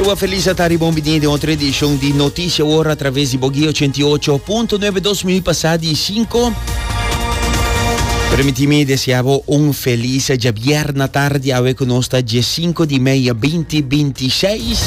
Cuba Feliz a ta riba un bini den otro edicion di Noticia Ora a traves di Boguí 88.9 dos minu pasá di sinku. Permiti mi desea bo un feliz djabièrnè tardi awe ku nos ta dje sinku di mei binti binti seis.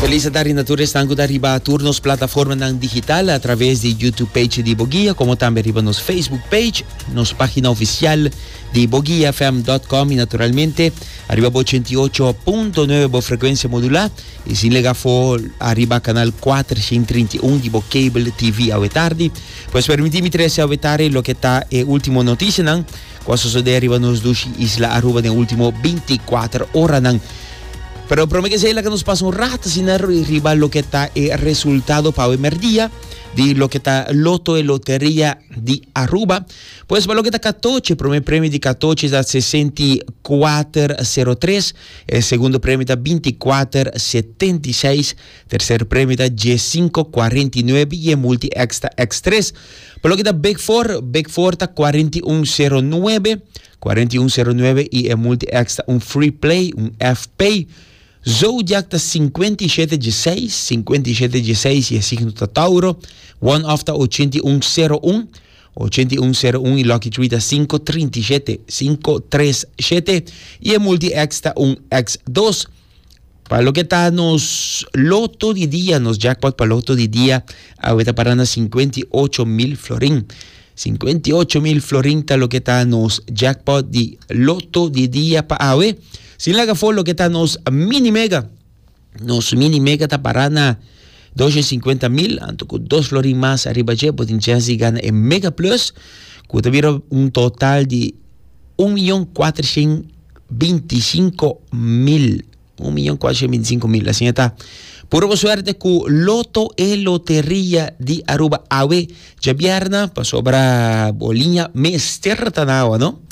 Feliz a tardi na tur esnan ku ta riba tur nos plataformanan digital a traves di YouTube page di Boguí komo tambe riba nos Facebook page. Nos página oficial di boguiafm.com y naturalmente ariba bo ochenta y ocho punto nueve bo frecuencia modulá y sin lega afó ariba canal cuatrocientos treinta y uno di bo cable TV awe tardi. Pues permití mi trece awe tardi loke ta e último noticianan cu a sosodé ariba nos dushi isla Aruba den último binticuater oranan. Pero promé ke esei laga nos pasa un rato asina riba loke ta e resultado pa awe merdia di loke ta loto e loteria di Aruba. Pues pa loke ta katochi, prome premi di katochi ta sesenti kuater sero tres, e segundo premi ta binti kuater setenta i seis, terser premi ta dies sinku kuarenta i nuebe i e multi eks ta eks tres. Pa loke ta big for, big for ta kuarenta i un sero nuebe, kuarenta i un sero nuebe i e multi eks ta un free play, un FP. Zodiak ta sinkuenta i shete dje seis, sinkuenta i shete dje seis i e signo ta Tauro, one off ta ochenta i un sero un, ochenta i un sero un i lucky tree ta sinku trinta i shete, sinku tres shete i e multi X ta un X dos. Pa loke ta nos loto di dia, nos jackpot pa loto di dia awe ta pará na sinkuenta i ocho mil florin. Sinkuenta i ocho mil florin ta loke ta nos jackpot di loto di dia pa awe. Sin laga for loke ta nos mini mega. Nos mini mega ta pará na dos e sinkuenta mil, anto ku dos florin mas ariba dje bo tin chèns di gana e Mega Plus, ku ta bira un total di un miyon kuatrashent binti i sinku mil. Un miyon kuatrashent binti i sinku mil. Asin e ta. Puru bo suerte ku Loto e Loteria di Aruba awe Dje bierna, pasobra bo liña mester ta na awa, no?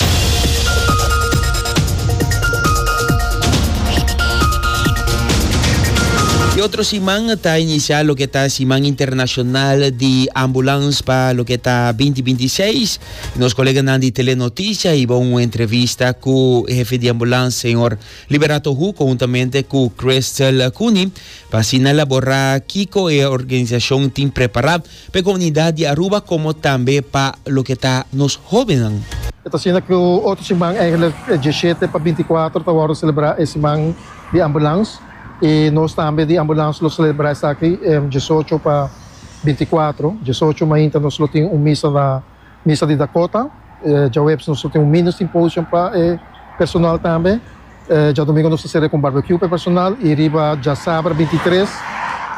E otro siman ta inisiá loke ta Siman Internashonal di Ambulans pa loke ta binti binti i seis. Nos koleganan di Tele Notisha hiba un entrevista ku hefe di ambulans señor Liberato Hu konhuntamente ku Crystal Cooney pa asina laborá kiko e organisashon tin prepará P'e comunidad di Aruba como tambe pa loke ta nos hobennan. E ta asina cu otro siman, eigenlijk e dieschete pa binticuatro ta wordo celebra e siman di ambulans y nos tambe di ambulans lo celebra esaki diesocho pa binticuatro. Diesocho mainta nos lo tin un misa na. Misa di Dakota, djaweps nos lo tin un mini symposium pa e personal tambe. Djadomingo nos ta sere ku un barbecue pa e personal i riba djasabra binti tres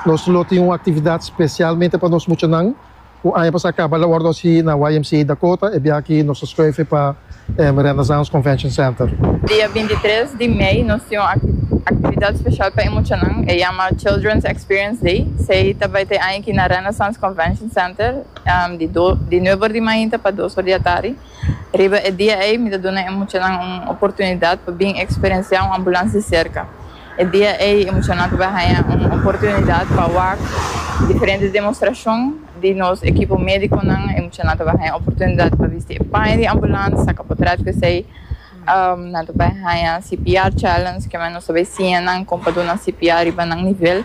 nos lo tin un aktividat spesialmente pa nos muchanan ku aña pasá kaba la wòrdu hasi na YMCA Dakota. E bia aki nos ta skuife pa Renaissance Convention Center. Dia binti tres di mei nos tin un aktividat spesial pa e muchanan, e yama Children's Experience Day. Sei ta bai ta e aña aki na Renaissance Convention Center. Di nueber di mainta pa dos or di atari. Riba e dia ei mi ta duna e muchanan un oportunidat pa bin eksperensiá un ambulans di serka. E dia ei e muchanan tabata haña un oportunidat pa wak diferente demostrashon di nos ekipo médikonan. E muchanan tabata haña oportunidat pa bisti e paña di ambulans, saka potret ku esei. Nan tabata haña CPR challenge, ke men nos ta bai siña nan kon pa duna CPR riba nan nivel.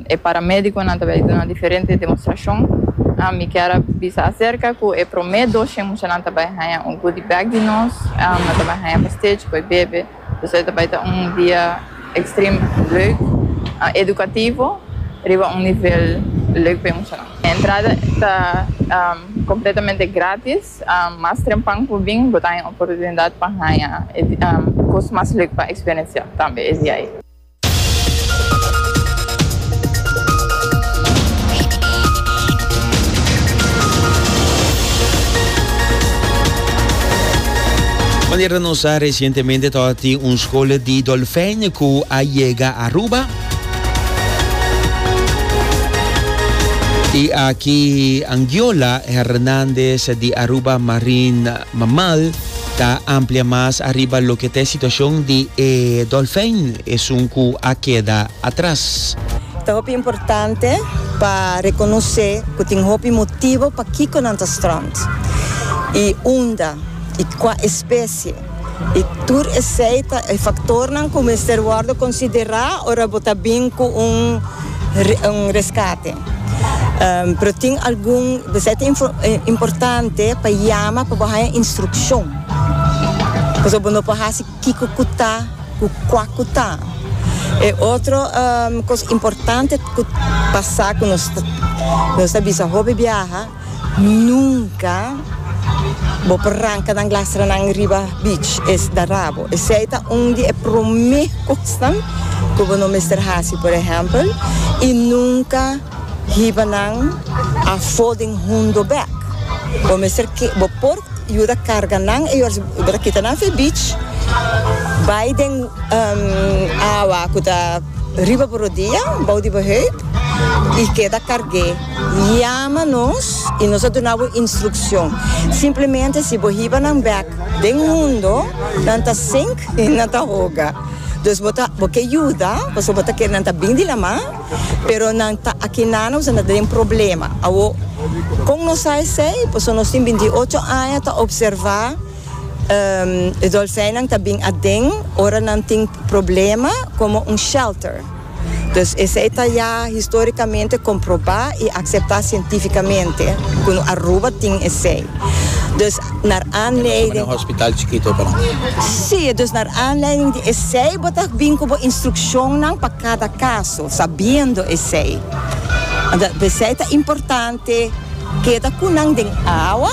e paramédikonan ta bai duna diferente demostrashon. Mi kier a bisa aserka ku e promé doshen muchanan ta bai haña un goodie bag di nos, nan ta bai haña pa stage ku e bebe. Por eso e ta bai ta un dia ekstrem leuk, edukativo riba un nivel leuk pa e muchanan. E entrada ta kompletamente grátis, mas trempan ku bo bin bo ta haña oportunidat pa haña e kos mas leuk pa eksperensiá tambe e dia ei. Manera nos sa recientemente tabata tin un schola di dolfijn cu a yega Aruba. Y aki Angiola Hernandez di Aruba Marine Mammal Ta amplia mas ariba loke ta e situacion di e dolfijn esun cu a keda atras. Ta hopi importante pa reconoce cu tin hopi motibo pakico nan ta strand y unda y cua especie y tur esey ta e factornan cu mester wordo considera ora bo ta bin cu un rescate. Pero tin algun besai ta importante pa yama pa bo haña instrukshon. Pasobra bo no por hasi kiko ku ta ku kua ku ta. E otro kos importante ku pasa ku nos ta bisa hopi biaha. Nunca bo por ranca nan glastranan riba beach, es ta rabo. Esey ta un di e prome cosnan cu bo no mester haci. Por ehempel, y nunca hiba nan afo den hundo bek. Bo mester ke, bo por yuda carga nan e yorzin bo ta kita nan fe beach, bay den awa cu ta riba bo rodia, bou di bo heup y keda carge. Yama nos y nos a duna bo instruccion. Simplemente si bo hiba nan bek den mundo, nan ta sink y nan ta hoga. Dus bo ta bo ke yuda pasobra bo ta kere nan ta bin di la mar, pero nan ta aki na nos a na den problema. Awo, con nos sa esey? Pasobra nos tin bin di ocho aña ta observa e dolfijnan ta bin aden ora nan tin problema como un shelter. Dus esei ta ya historicamente comproba y acepta cientificamente cu Aruba tin esei. Dus nar aanleiding. Si, dus nar aanleiding di esei bo ta bin cu bo instruccionnan pa cada caso, sabiendo esei. Anto pesei ta importante keda cu nan den awa,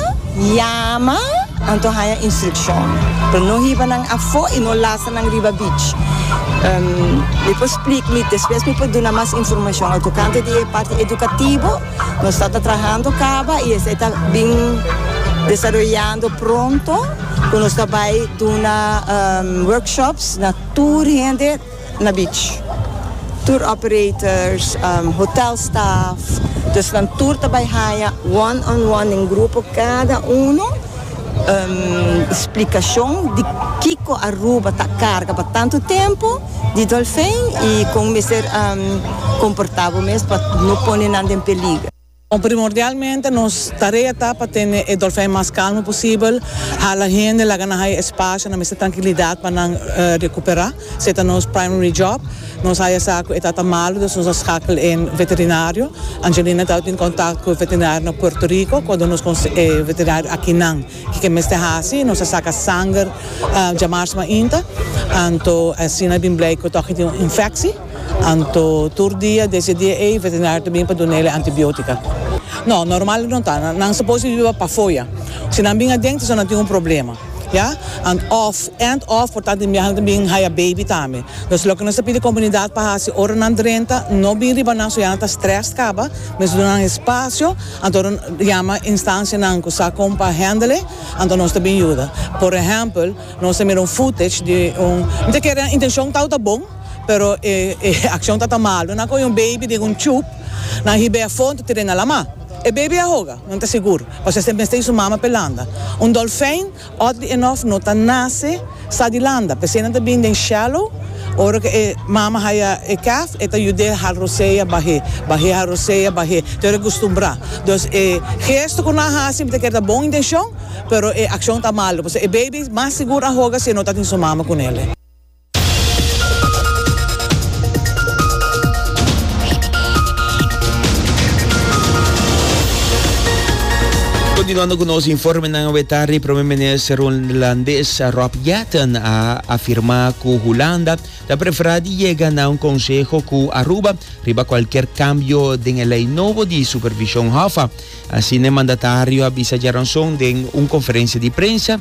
yama, anto haya instruccion. Pero no hiba nan afo y no laza. Nan riba beach. Mi por splik mi despues mi por duna mas informashon. Lo tokante di e parti edukativo nos ta ta trahando kaba i esei ta bin desaroyando pronto ku nos ta bai duna workshops na tur hende na beach. Tur operators, hotel staf, dus nan tur ta bai haña one on one den grupo kada uno. Splikashon di kiko Aruba ta karga pa tantu tempu di dolfin i kon mester komportá bo mes pa no pone nan den peliger. Primordialmente nos tarea ta pa tene e dolfin mas kalmu posibel, hala hende laga nan haya e spasio nan mester trankilidat pa nan rekuperá. Se ta nos primary job. Nos haya sa cu e ta ta malo, dus nos a schakel in veterinario. Angelina ta tin contact cu veterinario na Puerto Rico, cu a duna nos con e veterinario akinan kico mester haci. Nos a saca sanger djamars mainta, anto asina a bin blij cu toch e tin un infectie. Anto tur dia, desde e dia ey, veterinario ta bin pa duna el'e antibiotica. No, normal no ta. Nan suppose di biba pafoya. Si nan bin aden, ta so nan tin un problema. Ya, and of, and of, por tanto miaha nan ta bin haya baby tambe. Nos loke nos ta pidi comunidad pa haci ora nan drenta no bin riba nan so ya nan ta stressed caba, mester duna nan espacio, anto yama instancianan cu sa con pa handele, anto nos ta bin yuda. Por ehempel, nos ta mira un footage di un, mi ta kere intencion tau ta bon, pero e accion tata malo, nan coge un baby den un tube, nan hibe afo, nan ta tira e na lama. E baby a hoga? Nan ta sigur, pasobra esei mester di su mama pa e landa. Un dolfijn, òt di e nòf, no ta nase sa di landa. P'esei nan ta bini den shallow. Ora ku e mama haya e calf, e ta yud'é harrosea bah'é, bah'é harrosea bah'é, te ora e kustumbrá. Dus e gesto ku nan a hasi mester keda bon intenshon, pero e akshon ta malu, pasobra e baby mas sigur a hoga si e no ta tin su mama ku nel. Continuando cu nos informenan awe tardi, Prome Minister Holandés Rob Jetten a afirma cu Hulanda ta prefera di yega na un conseho cu Aruba riba cualkier cambio den e ley nobo di supervision Hoffa. Asina e mandatario a bisa djaranson den un conferencia di prensa.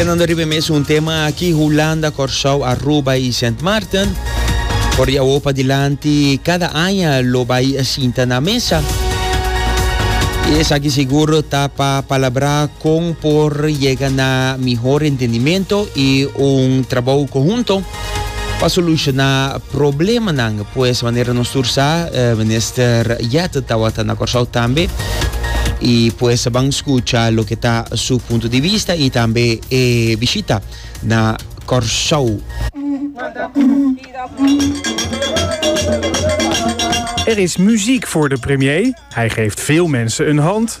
Kenando riba e mes un tema aki, Hulanda, Kòrsou, Aruba i Sint Maarten. Por di awor padilanti kada aña lo bai sinta na mesa. I esaki sigur ta pa palabrá kon por yega na mihor entendimento i un trabou konhunto. Pa soluciona problemanan pues manera nos tur sa minister Jette tawata na Corsou tambe y pues ban scucha loke ta su punto di vista y tambe e bishita na Corsou. Er is muziek voor de premier, hij geeft veel mensen een hand.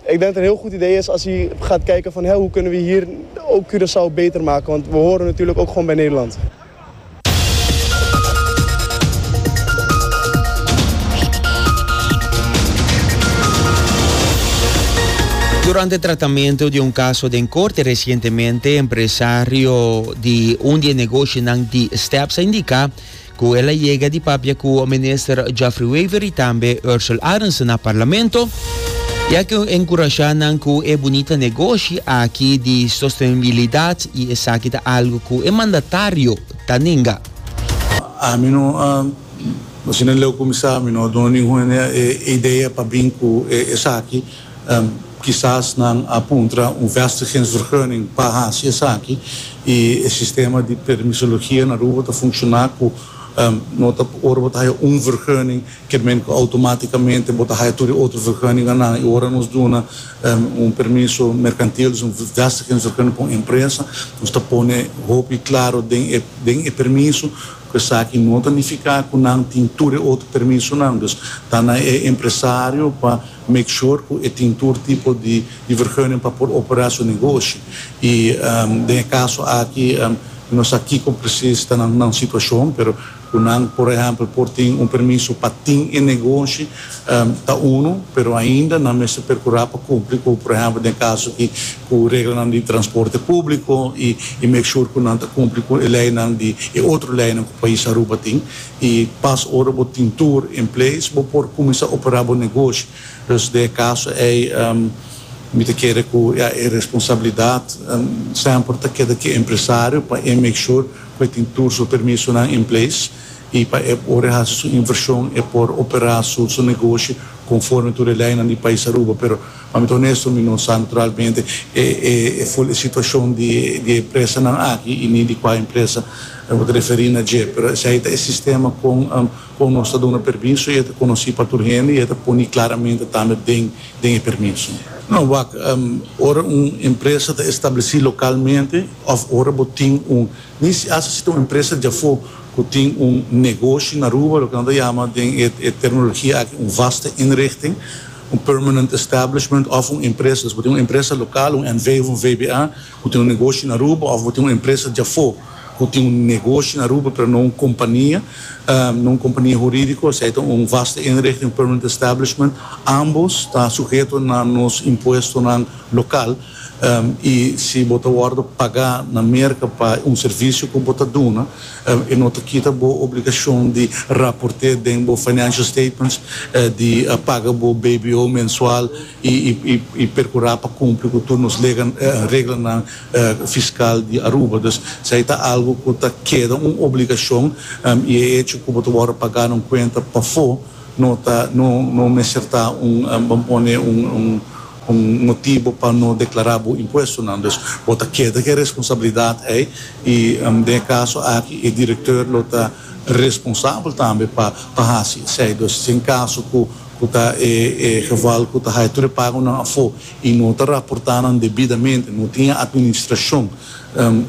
Ik denk dat een heel goed idee is als je gaat kijken van hè, hoe kunnen we hier ook Curaçao beter maken, want we horen natuurlijk ook gewoon bij Nederland. Durante tratamiento di un caso den corte recientemente, empresario di un di e negoshinan di Steps a indica Cu el a yega di papia cu Minister Geoffrey Wever y tambe Ursel Arendse na Parlamento, e a ken encurasha nan cu e bunita negoshi aki di sostenibilidad y esaki ta algo cu e mandatario ta nenga. Ami no a, asina leu cuminsa, ami no a duna ningun hende e idea pa bin cu esaki. Kisas nan a puntra un vestigingsvergunning pa hasi esaki i e sistema di permisologia na Aruba ta funshoná ku no ta ora bo ta haya un vergunning ke men ku outomátikamente bo ta haya tur e otro vergunninganan i ora nos duna un permiso merkantil dus un vestigingsvergunning pa un empresa nos ta pone hopi klaro den e den e permiso ku esaki no ta nifiká ku nan tin tur e otro permisonan dus ta na e empresario pa Make sure cu e tin tur tipo di di vergunning pa por opera su negoshi. Y den e caso aki no sa kico precies ta nan nan situacion, pero cu nan por ehempel por tin un permiso pa tin e negoshi ta uno, pero ainda nan mester percura pa cumpli cu por ehempel den e caso aki cu reglanan di transporte publico y make sure cu nan ta cumpli cu e leynan di e otro leynan cu pais Aruba tin. y pas ora bo tin tur en place bo por cuminsa opera bo negoshi. Dus den e caso ey mi ta kere cu ya e responsabilidad semper ta keda cu e empresario pa e make sure cu e tin tur su permisonan en place y pa e ora e haci su inversion e por opera su negoshi conforme tur e leynan di pais Aruba pero Pa mi ta onesto mi no sa naturalmente e ful e situacion di e empresanan aki y ni di cua empresa bo ta referi na dje, pero esai ta e sistema con con nos ta duna permiso y e ta conoci pa tur hende y e ta poni claramente tambe den den e permiso. No, wak, ora un empresa ta estableci localmente of ora bo tin un, ni si hasta si ta un empresa di afo cu tin un negoshi na Aruba, loke nan ta yama den e terminologia aki un vaste inrichting, Un permanent establishment òf un empresa. Si bo tin un empresa lokal, un NV òf un VBA, ku tin un negoshi na Aruba òf bo tin un empresa dja afó ku tin un negoshi na Aruba pero no un kompania, no un kompania hurídiko, esei ta un vaste inrichting, un permanent establishment. Ambos ta suheto na nos impuestonan lokal i si bo ta wòrdu pagá na Merka pa un servisio ku bo ta duna, E no ta kita bo obligashon di raporté den bo financial statements, di paga bo BBO mensual i perkurá pa kumpli ku tur nos reglanan fiskal di Aruba. Dus esei ta algu ku ta keda un obligashon i e echo ku bo ta wòrdu pagá na un kuenta pafó no ta no mester ta un bo pone un. Un motibu pa no deklará bo impuestonan. Dus bo ta keda ku e responsabilidat ei i den e kaso aki e direktor lo ta responsabel tambe pa pa hasi esei. Dus si en kaso ku ku ta e e geval ku ta haya tur e pagonan afó i no ta raportá nan debidamente, no tin e administrashon,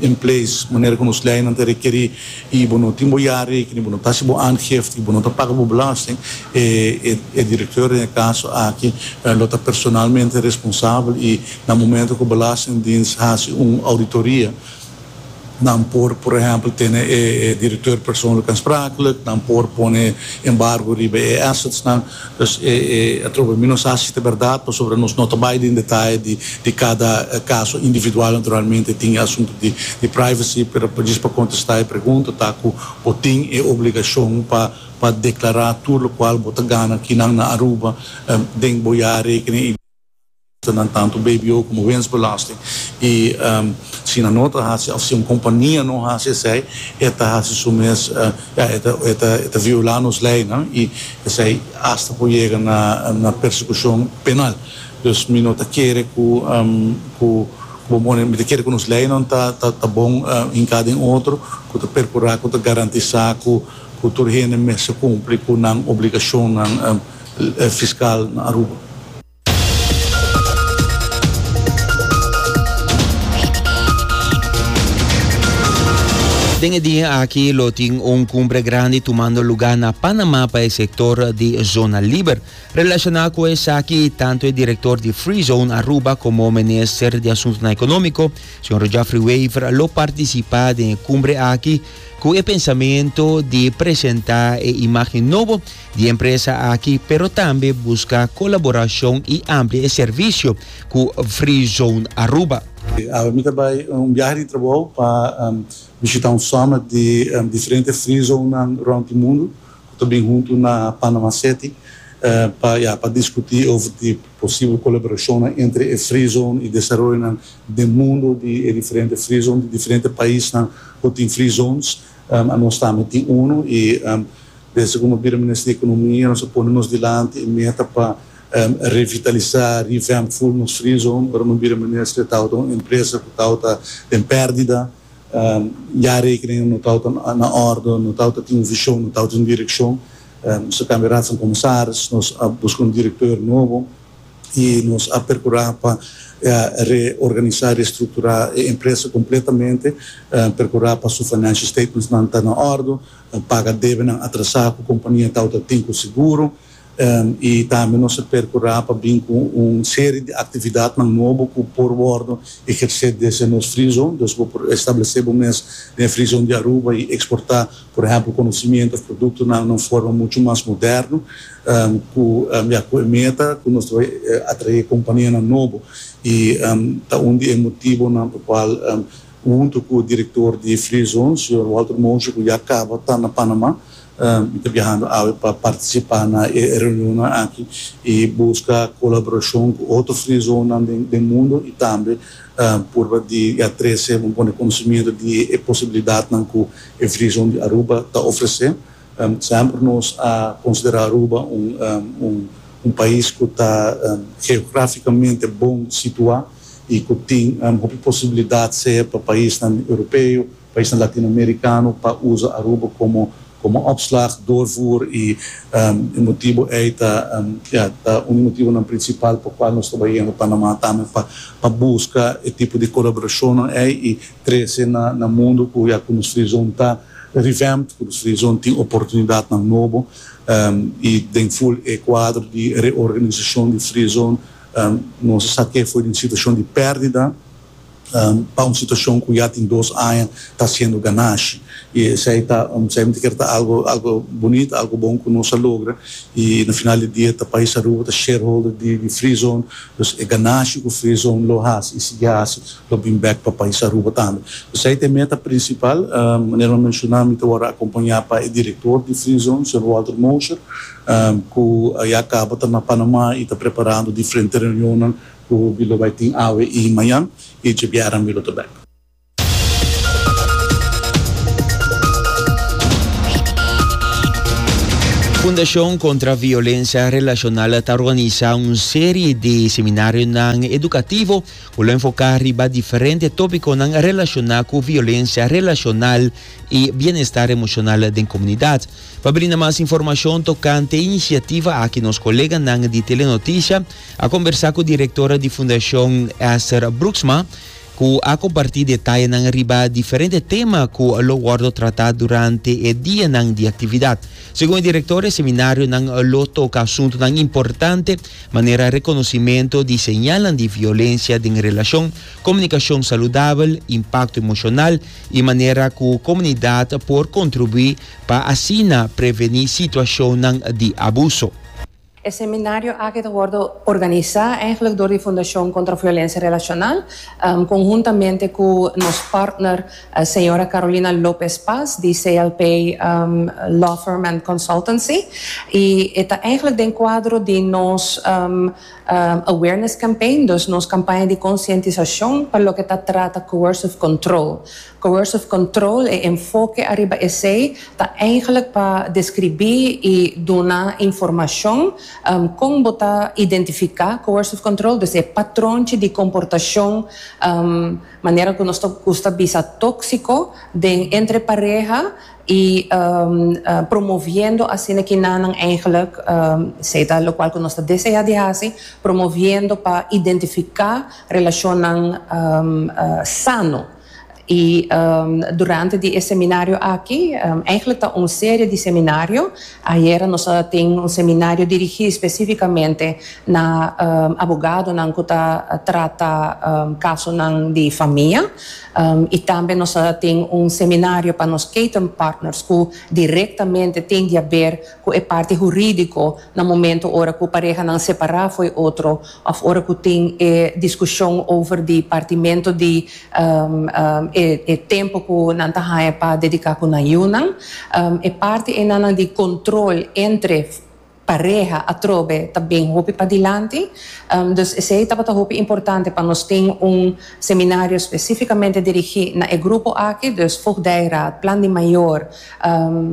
en place manera ku nos leinan ta rekerí i bo no tin bo ya rekening bo no ta hasi bo aangifte i bo no ta paga bo belasting e direkteur den e kaso aki lo ta personalmente responsabel i na momento ku belastingdiens hasi un ouditoria nan por por ehèmpel tene e direkteur persoonlijk aansprakelijk nan por pone embargo riba e assetsnan Pues e atrobe mi no sa si ta berdad pasobra nos no ta bay den detaye di cada caso individual, naturalmente tin e asunto di privacy, pero pa djis pa contesta e pregunta ta cu bo tin e obligacion pa declara tur locual bo ta gana akinan na Aruba den bo ya rekening. ta nan tantu bbo komo wensbelasting i si nan no ta hasi òf si un kompania no hasi esei e ta hasi su mes ya e ta e ta e ta violá nos leinan i esei asta por yega na na persekushon penal dus mi no ta kere ku ku bo pone mi ta kere ku nos leinan ta ta ta bon hinká den otro ku ta perkurá ku ta garantisá ku ku tur hende mester kumpli ku nan obligashonnan fiskal na Aruba. Den e dia aki lo tin un cumbre grandi tumando lugar na Panama pa e sector di Zona Liber. Relaciona cu esaki, tanto e director di Free Zone Aruba como Minister di Asuntonan Economico, Sr. Geoffrey Wever, lo participa den e cumbre aki cu e pensamento di presenta e imagen nobo di empresa aki pero tambe buska kolaborashon i amplia e servisio ku Free Zone Aruba. Awe mi ta bai un biahe di trabou pa bishita un sòmmet di diferente Free Zonenan rònt di mundu ku ta bin huntu na Panama City pa ya pa diskutí over di posibel kolaborashonnan entre e Free Zone i desaroyonan den mundu di e diferente Free Zone di diferente paisnan ku tin Free Zones. Nos tambe tin unu i. Pensa ku nos bira Minister di Ekonomia nos a pone nos dilanti e meta pa revitalisá, revamp, full nos Free Zone. Ora nos bira Minister tabata un empresa ku tabata den pèrdida, ya rekening no tabata na òrdu, no tabata tin un vishon, no tabata tin un direkshon. Nos a kambia Raad van Commissaris, nos a buska un direktor nobo i nos a perkurá pa reorganisá, restrukturá e empresa kompletamente, perkurá pa su financial statementsnan ta na òrdu, a paga debenan atrasá ku kompania tau ta tin ku seguro i tambe nos a perkurá pa bin ku un serie di aktividatnan nobo ku por wòrdu ehersé desde nos Free Zone. Dus bo por establesé bo mes den e Free Zone di Aruba i eksportá, por ehèmpel, konosimiento òf produktonan na un forma muchu mas moderno ku ya ku e meta ku nos ta bai atraé kompanianan nobo i ta un di e motibonan pa kual Huntu ku direktor di Free Zone, señor Walter Moshe, ku ya kaba ta na Panama, mi ta biahando awe pa partisipá na e reunionnan aki i buska kolaborashon ku otro Free Zonenan den mundu i tambe purba di ya trese un pone konosementu di e posibilidatnan ku e Free Zone di Aruba ta ofresé. Semper nos a considera Aruba un pais cu ta geograficamente bon situa y cu tin hopi posibilidad sea pa paisnan Europeo, paisnan Latinoamericano pa usa Aruba como opslag, doorvoer y e motibo ey ta un di motibonan principal pa cual nos ta bay yendo Panama tambe pa busca e tipo di colaboracionnan ey y trese na mundu ku ya ku nos frizon ta revamped, ku nos frizon tin oportunidatnan nobo, i den ful e kuadro di reorganisashon di frizon nos a sa ke foi di un situashon di pèrdida pa un situashon ku ya tin dos aña ta hasiendo ganashi. I esei ta esei ta kere ta algu algu bunit, algu bon ku nos a logra, i na final di dia ta pais Aruba ta shareholder di frizon, dus e ganashi ku frizon lo hasi i sigui hasi, Lo bin bek pa pais Aruba tambe. Esei ta e meta prinsipal. Manera mi menshoná mi ta wòrdu akompañá pa e direktor di Free Zone, señor Walter Mosher, ku a ya kaba ta na Panamá i ta preparando diferente reunionnan ku mi lo bai tin awe i mañan, i dje bièren mi lo ta bek. Fundashon Kontra Violensia Relashonal ta organisá un serie di seminarionan edukativo, Cu lo enfoca riba diferente topiconan relaciona cu violencia relacional y bienestar emocional den comunidad. Pa brinda mas informacion tocante e iniciativa aki nos coleganan di Telenoticia a conversa cu directora di Fundacion Esther Broeksma cu a comparti detayenan riba diferente tema cu lo wordo trata durante e dianan di actividad. Segun e directora e seminarionan lo toca asuntonan importante manera reconocimento di señalnan di violencia den relacion, comunicacion saludabel, impacto emocional y manera cu comunidad por contribui pa asina preveni situacionnan di abuso. E seminario aki ta wordo organisa eigenlijk door di Fundacion Contra Violencia Relacional, conhuntamente cu nos partner, Señora Carolina Lopez Paz di CLP Law Firm and Consultancy y e ta eigenlijk den cuadro di nos awareness campaign, dus nos campaña di concientisacion pa loke ta trata coercive control. Coercive control e enfoke ariba esey ta eigenlijk pa describi y duna informacion con bo ta identifica coercive control, dus e patronchi di comportacion. Manera ku nos ta gusta bisa tóksiko den entre pareha i promoviendo asina kinanan eigentlik se ta lokual ku nos ta deseá di hasi, promoviendo pa identifiká relashonnan sano. I durante di e seminario aki, eigentlik ta un serie di seminario, Ayera nos a tin un seminario dirigí specificamente na abogadonan cu ta trata casonan di famia y tambe nos a tin un seminario pa nos catering partners cu directamente tin di haber cu e parti juridico na momento ora cu parehanan separa fo'i otro Of ora cu tin e discusion over di partimento di e tempo cu nan ta haña pa dedica cu nan yiunan. E parti enanan di control entre pareha atrobe ta bin hopi padilanti. Dus esey tabata hopi importante pa nos tin un seminario specificamente dirigi na e grupo aki, dus voogdijraad, plan di mayor,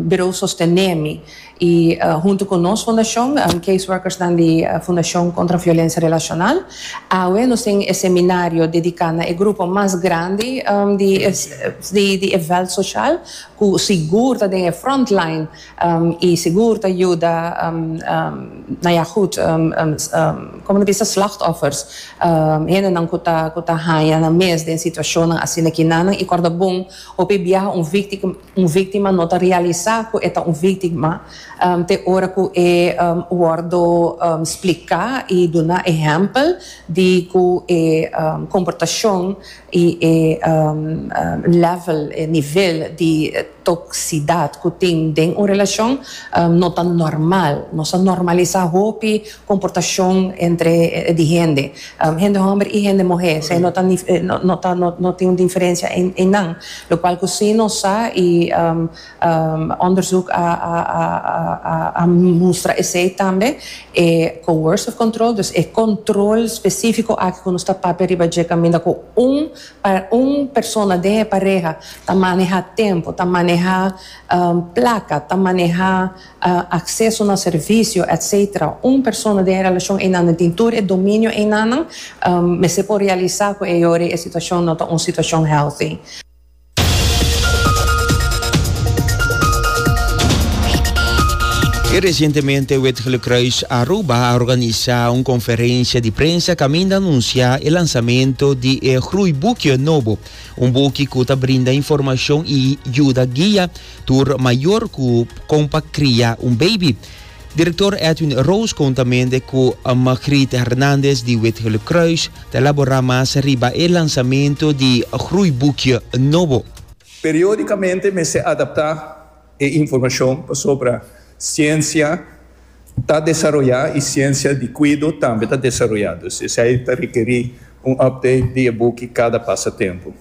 bureau Sostenemi. y hunto cu nos fundacion, Case Workersnan di Fundacion Contra Violencia Relacional, awe nos tin e seminario dedica na e grupo mas grandi di e veld social cu sigur ta den e front line y sigur ta yuda na ya goed como ta bisa slachtoffers, hendenan cu ta haya nan mes den situacionnan asina kinan y corda bon hopi biaha un victima. Un víktima no ta realisá ku e ta un víktima te ora ku e wòrdu spliká i duna ehèmpel di ku e komportashon i e lèvel, e nivel di toksidat ku tin den un relashon no ta nòrmal. Nos a nòrmalisá hopi Comportacion entre di hende. Hende homber y hende muher. Sey no ta no ta no tin un diferencia en nan. Lo cual cu si nos sa y onderzoek a a mustra esey tambe e coercive control, dus e control specifico aki cu nos ta papia riba dje caminda cu un un persona den e pareha ta maneha tempo, ta maneha placa, ta maneha acceso na servicio etc. Un persona den e relacion eynannan tin tur e dominio eynannan, mester por realisa cu e yori e situacion no ta un situacion healthy. Recientemente Witgelecruis Aruba a organisa un conferencia di prensa caminda anuncia e lansamento di e Groeibukje Nobo, un buki cu ta brinda informacion y yuda guia tur mayor cu con pa cria un baby. Director Edwin Roos contamende cu Margriet Hernandez di Witgele Croes ta labora mas riba e lansamento di groeiboekje nobo. Periodicamente mester adapta e informacion pasobra ciencia Ta desaroyá i siensia di kuido tambe ta desaroyá, dus esei ta rekerí un update di e buki kada pasa tempu.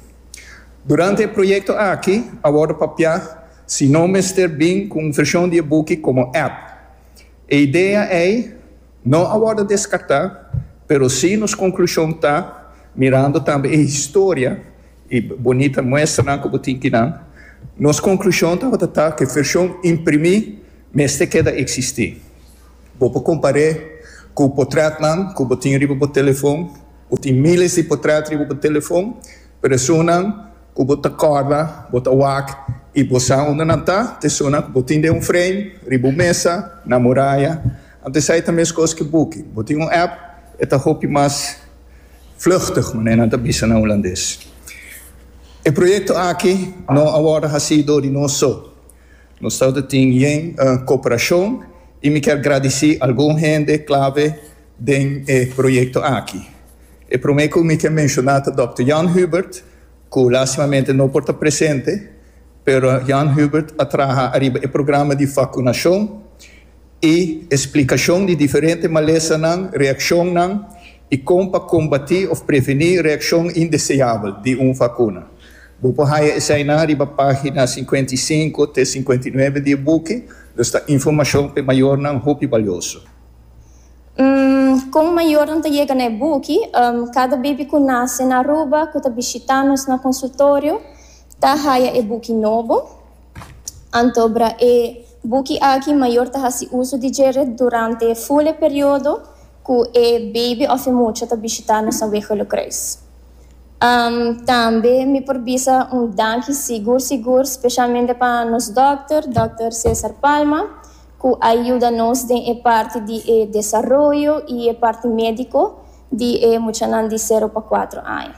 Durante e proyekto aki a wòrdu papiá si no mester bin ku un vershon di e buki komo app. E idea ei no a wòrdu deskartá, pero sí nos konklushon ta, mirando tambe e historia i bonita muestranan ku bo tin kinan, nos konklushon tabata ta ku e vershon imprimí, Mester keda eksistí. Bo por kompar'é ku potrètnan ku bo tin riba bo telefon. Bo tin míles di potrèt riba bo telefon, pero esunnan ku bo ta kòrda, bo ta wak i bo sa unda nan ta, ta esunnan ku bo tin den un frame, riba un mesa, na muraya. Anto esei ta meskos ku buki. Bo tin un app, e ta hopi mas vluchtig, manera nan ta bisa na hulandes. E proyekto aki no a wòrdu hasí dor di nos so. Nos tabata tin yen cooperacion y mi kier gradici algun hende clave den e proyecto aki. E prome cu mi kier menciona ta Dòkter Jan Hubert, cu lastimamente no por ta presente, pero Jan Hubert a traha ariba e programa di vacunacion y explicacion di diferente malesanan, reaccionnan I kon pa kombatí òf previní reakshon indeseabel di un vakuna. Bo por haya esei nan riba página sinkuenta i sinku te sinkuenta i nuebe di e buki, dus ta informashon pa e mayornan hopi balioso. Kon mayornan ta yega na e buki? Kada bebi ku nase na Aruba ku ta bishitá nos na konsultorio ta haya e buki nobo. Anto obra e buki aki mayor ta hasi uso di dje ret durante e ful e periodo cu e baby of e mucha ta bishita nos aweho Lucreis. Um, tambe mi por bisa un danki sigur sigur specialmente pa nos dokter, Dokter Cesar Palma, cu a yuda nos den e parti di e desaroyo y e parti medico di e muchanan di sero pa cuatro aña.